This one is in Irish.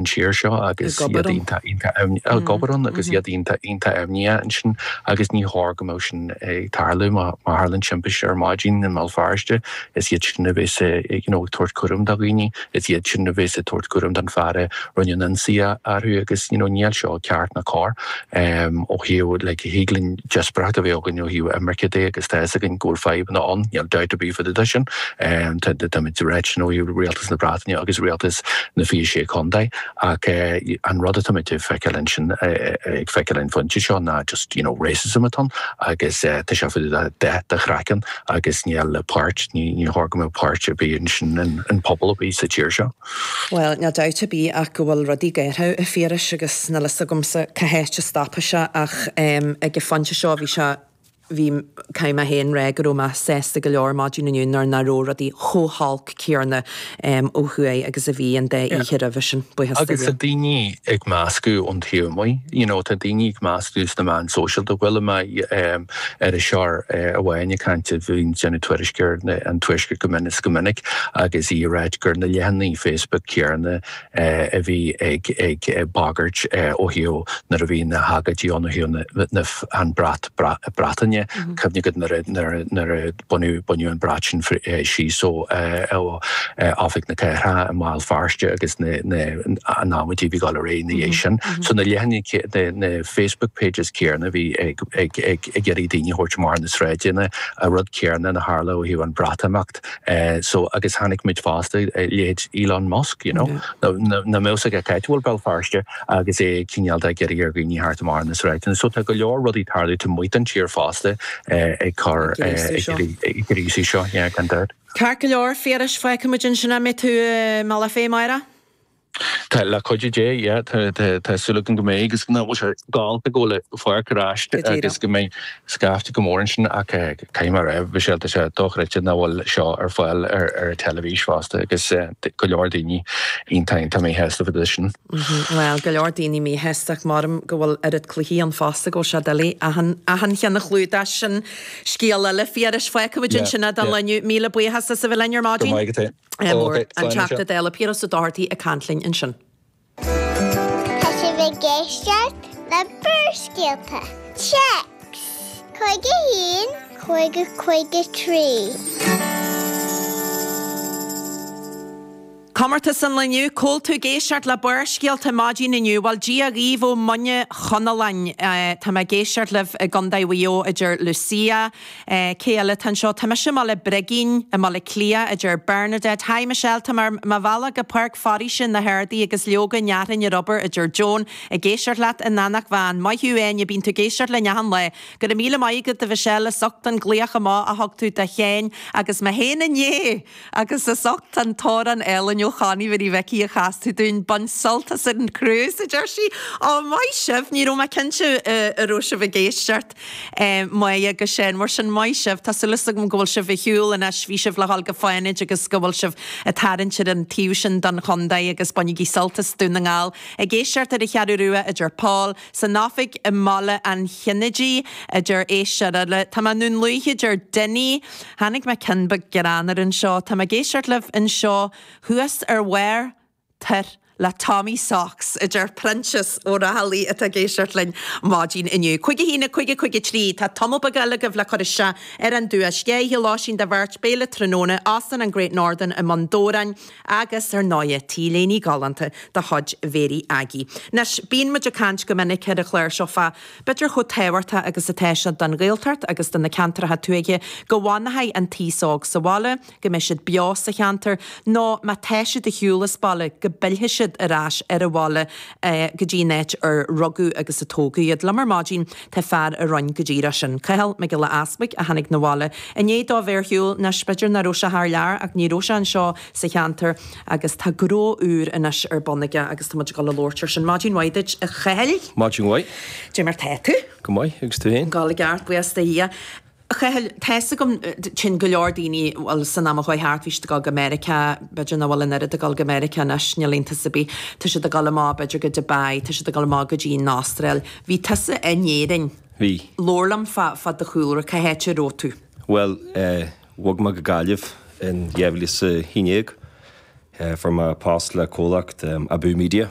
an tír seo agus ag obair ann agus iad iontach iontach imníoch ansin agus ní chóir go mbeadh sin ag tarlú. Má tharlann timpiste ar maidin i mBéal Feirste is iad sin a bhéas you know ag tabhairt cúraim do dhaoine, is iad sin a bhéas ag tabhairt cúraim don fear a rinne an ionsaí orthu agus you know níl seo ceart ná cóir. Ehm, ó thaobh, like, thig linn díospóireacht a bheith againn ó thaobh imirce de agus tá 'fhios againn go bhfuil fadhbanna ann, níl dabht ar bith fá dtaobh de sin. Ehm, tá, tá muid ag rá sin ó thaobh Rialtas na Breataine agus Rialtas na Fiche Sé Chontae ach eh, an rud atá muid ag feiceáil ag an phointe seo ná just, you know, racism atá ann agus eh, tá sé fá dtaobh de dath do chraiceann agus níl páirt, ní, ní chóir go mbeadh páirt ar bith aige sin in pobal ar bith sa tír seo. Bhuel, níl dabht ar bith ach go bhfuil rudaí géaraithe a Phiarais agus níl fhios agamsa cá háit a stopfaidh sé ach ag an phointe seo bhí sé, bhí, caithfidh mé féin rá go raibh mé sásta go leor maidin inniu nuair nach raibh rudaí chomh holc céanna ó thuaidh agus a bhí an dá oíche roimhe sin, buíochas do Dhia. Agus tá daoine ag meascadh ón taobh amuigh, you know, tá daoine ag meascadh sna meáin sóisialta, chuala mé, iriseoir amháin ag caint a bhíonn ag déanamh tuairisc ar an Tuaisceart go mion is go minic agus í ag rá gur na leathanaigh Facebook céanna a bhí ag ag bagairt ó thaobh nuair a bhí na hagóidí ann ó thaobh na an brat Breataine. Cuimhne agat nuair a nuair a Baineadh an brat sin síos ó Oifig na Cathrach i mBéal Feirste agus an amaidí a bhí ag dul ar aghaidh ina dhiaidh sin. So na leathanaigh, na Facebook pages céanna a bhí ag iarraidh daoine a thabhairt amach ar na sráideanna, an rud céanna a tharla ó thaobh an Bhreatimeacht. So agus chonaic muid fosta, leithéid Elon Musk, you know, nach mbeadh 's aige cá háit a bhfuil Béal Feirste agus é cineál de ag iarraidh ar dhaoine theacht amach ar na sráideanna. So tá go leor rudaí ag tarlú taobh amuigh den tír fosta. ag cur ag gríosú seo, yeah, gan dabht. Ceart go leor, a Phiarais, feicimid ansin an mbeidh tú i mBealach Féich amárach. Tá le cuidiú Dé, yeah, tá súil agam go mbeidh agus go bhfuil sé galánta go bhfuil an Pháirc ar ais agus go mbeidh scaifte go mór ansin ach caithfidh mé a rá bhí sé tá sé dochreidte nach bhfuil seo ar fáil ar an teilifís fosta agus go leor daoine iontach iontach míshásta fá dtaobh de sin. Bhuel, go leor daoine míshásta ach maram go bhfuil oiread cluichí ann fosta go bhfuil sé doiligh achan, achan cheann a chlúdach. Sin scéal eile. A Phiarais, fágfaimid ansin é don lá inniu. Míle buíochas as a bheith linn ar maidin. Go raibh maith agat. Slán anois. An Teachta Dála Piaras Ó Dochartaigh ag caint linn ansin. Tá sibh ag éisteacht le Barrscéalta, text, 51 50 53. Comórtas an Lae Inniu, cá bhfuil tú ag éisteacht le Barrscéalta maidin inniu, bhuel Dia dhaoibh ó Mhuine Chonalláin. Tá mé ag éisteacht libh i gCondae Mhuigh Eo a deir Lucia. Cé eile atá anseo? Tá mise i mBaile Brigín i mBaile Cliath a deir Bernadette. Hi Michelle, tá mé ar mo bhealach go Páirc Foraoise na hArdadh agus leoga i nGaoth Dobhair a deir Joan. Ag éisteacht leat in Eanach Mheáin. Maith thú Áine, bíonn tú ag éisteacht linn achan lá. Go raibh míle maith agat a Mhichelle, as ucht an glaoch amach a thug tú do Shéan agus mé féin inné! Agus as ucht an t-amhrán álainn ó Chonnie Mhary Mhicí a chas tú dúinn. Bain sult as an cruise, a deir sí. Ó, maith sibh! Ní raibh mé cinnte a raibh sibh ag éisteacht. Maggie agus Séan, mar sin, maith sibh. Tá súil agam go bhfuil sibh ar shiúl anois. Bhí sibh le dhul go Fánaid agus go bhfuil sibh ag tarraingt ar an taobh sin don chondae agus bainigí sult as Dún na nGall. Ag éisteacht ar an Cheathrú Rua, a deir Paul. san oifig i mBaile an Chinnéidigh, a deir aos Siorraile. Tá mé i nDún Lúiche, a deir Dinny. Tháinig ceann beag greannmhar anseo. Tá mé ag éisteacht libh anseo thuas ar bharr Thártha le Tommy Socks, a deir Proinsias Ó Raghallaigh atá ag éisteacht linn maidin inniu. Cúig a haon a cúig a cúig a trí. Tá tamall beag eile agaibh le cur isteach ar an duais. Sé tá ann lóistín do bheirt, béile tráthnóna, Óstán an Great Northern i mBun Dobhráin, Agus ar ndóighe, t-léine ghalánta de chuid Mhary Aggie. Anois, bíonn muid ag caint go minic ar an gclár seo fá b'fhéidir chomh tábhachtach agus atá sé don Ghaeltacht agus do na ceantracha tuaithe go bhfanfaidh an t-aos óg sa bhaile, go mbeidh siad beo sa cheantar, nó má tá siad ar shiúl as baile go bpillfidh siad ar ais ar an bhaile go dtí an áit ar rugadh agus a tógadh iad. Liom ar maidin. Tá fear a rinn go díreach sin, Cathal Mac Giolla Easpaig, a tháinig 'na bhaile i ndiaidh dó bheith ar shiúl, anois b'fhéidir nach raibh sé thar lear ach ní raibh sé anseo sa cheantar agus tá gnó úr anois ar bun aige agus tá muid ag dul a labhairt air sin. Maidin mhaith duit, a Chathal. Maidin mhaith. Caidé mar tá tú? Go maith, agus tú fhéin? Go breá ceart, buíochas do Dhia. Cathal tá a fhios agam féin go leor daoine, bhuel san am a chuaigh thart bhí siad ag dul go Meiriceá, b'fhéidir nach bhfuil an oiread ag dul go Meiriceá anois, ná Albain ach oiread, tá siad ag dul amach b'fhéidir go Dubai, tá siad ag dul amach go dtí an Astráil. Bhí tusa in Éirinn. Bhí. Labhair liom fá, fá do chúlra, cá háit a raibh tú? Bhuel eh bhog mé go Gaillimh in dhá mhíle is a haon dhéag fuair mé post le comhlacht eh Abú Media.